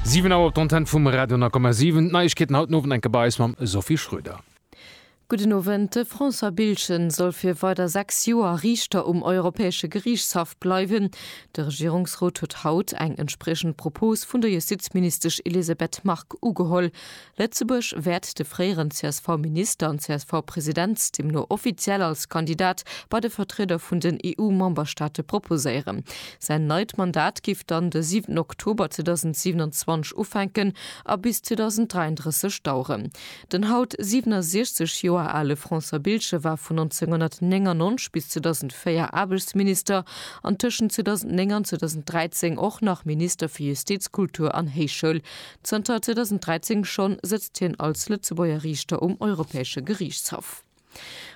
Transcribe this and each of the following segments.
Siwen Auer op der Antenn vum Radio 9,7. D'Neiegkeeten haut den Owend enke bei eis mam Sophie Schröder. Gudden Owend. De François Biltgen soll fir weider 6 Joer Riichter um Europäesche Geriichtshaff bleiwen. De Regierungsrot huet haut eng entspriechend Propos vun der Justizministesch Elisabeth Margue ugeholl. Lëtzebuerg wäert de fréieren CSV-Minister an CSV-President deemno offiziell als Kandidat bei de Vertrieder vun den EU-Memberstaate proposéieren. Säin neit Mandat géif dann de 7 Oktober 2027 ufänken a bis 2033 daueren. Den haut 67 Joer ale François Biltgen war vun 1999 bis 2004 Aarbechtsminister an tëschent 2009 an 2013 och nach Minister fir Justiz, Kultur an Héichschoul. Zënter 2013 schonn sëtzt hien als Lëtzebuerger Riichter um Europäesche Geriichtshaff.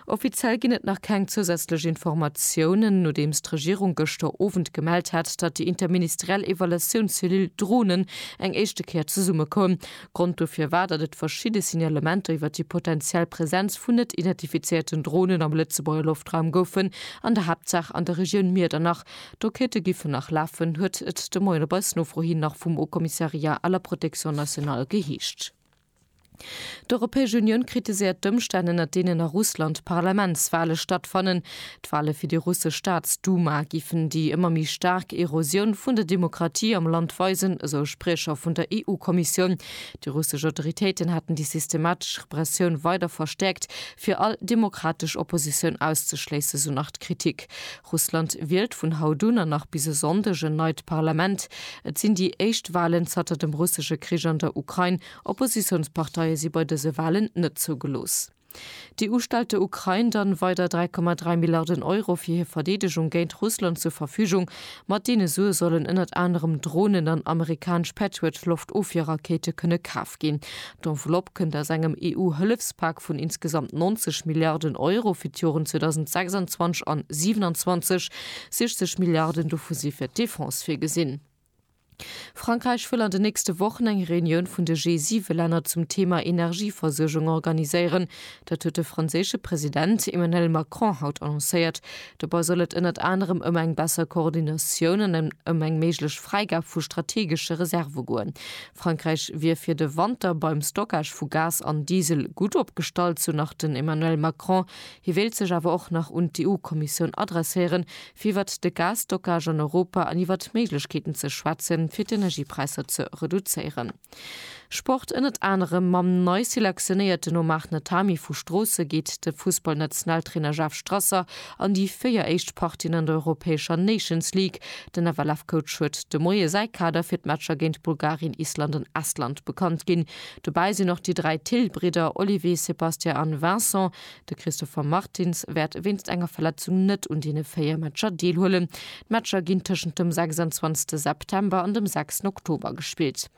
Offiziell ginn et nach keng zousätzlech Informatiounen, nodeems d'Regierung gëschter Owend gemellt hat, datt déi interministeriell Evaluatiounscellule Dronen eng éischte Kéier zesumme koum. Grond dofir war, datt et verschidde Signalementer iwwer déi potenziell Presenz vun net identifizéierten Dronen am Lëtzebuerger Loftraum goufen, an der Haaptsaach an der Regioun Miedernach, D'Enquêtë giffen nach lafen, huet et de Moien op eis Nofro hin nach vum Haut Commissariat à la protection nationale geheescht. D'Europäesch Unioun kritiséiert d'Ëmstänn, ënner deenen a Russland d'Parlamentswale stattfannen. D'Wale fir déi russesch Staatsduma giffen déi ëmmer méi staark Erosioun vun der Demokratie am Land weisen, esou e Spriecher vun der EU-Kommissioun. Déi russesch Autoritéiten hätten déi systematesch Repressioun weider verstäerkt, fir all demokratesch Oppositioun auszeschléissen, esou nach d'Kritik. Russland wielt vun haut un an nach bis e Sonndeg en neit Parlament. Et sinn déi éischt Walen zatter dem russesche Krich an der Ukrain. Oppositiounsparteie si bei dëse Walen net zougelooss. D'EU stellt der Ukrain dann weider 3,3 Milliarden Euro fir hir Verdeedegung géint Russland zur Verfügung. Mat deene Sue sollen ënnert anerem Dronen an amerikanesch Patriot-Loftofwierrakete kënne kaf ginn. D'Enveloppe kënnt aus engem EU-Hëllefspak vun insgesamt 90 Milliarden Euro fir d'Joren 2026 an 27. 60 Milliarden dovu si fir d'Defense virgesinn. Frankräich wëll an den nächste Wochen eng Reunioun vun de G7-Länner zum Theema Energieversuergung organiséieren. Dat huet de franséische President Emmanuel Macron haut annoncéiert. Dobei soll et ënnert anerem ëm eng besser Koordinatioun an ëm eng méiglech Fräigab vu strategesche Reserve goen. Frankräich wier fir de Wanter beim Stockage vu Gas an Diesel gutt opgestallt, sou nach den Emmanuel Macron. Hie wéilt sech awer och nach un d'EU-Kommissioun adresséieren, fir iwwert de Gasstockage an Europa an iwwert d'Méiglechkeeten ze schwätzen, fir d'Energiepräisser ze reduzéieren. Sport, Ënnert anerem mam nei selektionéierten Omar Natami vu Stroosse geet de Fussballnationaltrainer Jeff Strasser an déi véier éischt Partien an der europäescher Nations League. Den FLF-Coach huet de Moie säi Kader fir d'Matcher géint Bulgarien, Island an Estland bekannt ginn. Dobäi sinn och déi dräi Thill-Bridder Olivier, Sébastien an Vincent. De Christopher Martins wäert wéinst enger Verletzung net un deene véier Matcher deelhuelen. D'Matcher ginn tëschent dem 26 September an dem 6 Oktober gespillt.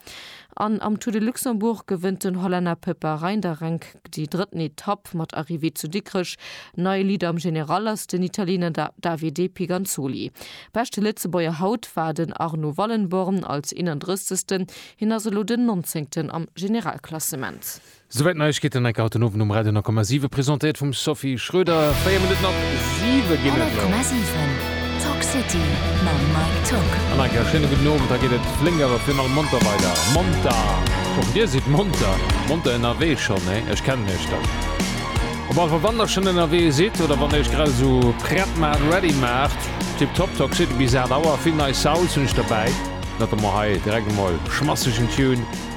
An am Tour de Luxembourg gewënnt den Hollänner Peppa Reinderenk déi drëtten Etapp mat Arrivée zu Dikrech. Nei Leader am General ass den Italiener Davide Piganzoli. Beschte Lëtzebuerger haut war den Arno Wallenborn als 31. Hien ass elo den 19. am Generalklassement. Souwäit d'Neiegkeeten, enker haut den Owend um Radio 9,7, presentéiert vum Sophie Schröder. 4 Minutten op 7 ginn et elo. 100,7 Talk City mam Mike Tock. An enker e schéine gudden Owend. Da geet et flénk awer virun allem monter weider. Monter! Och dir sidd monter. Monter ënnerwee schonn, hé? Ech kennen iech dann. Op alle Fall, wann der schonn ënnerwee sidd oder wann der iech grad esou prett maacht, ready maacht, tiptop. Talk City bis 8 Auer. Vill nei Souls hunn ech derbäi. Notamment hei direkt emol schmassegen Tune.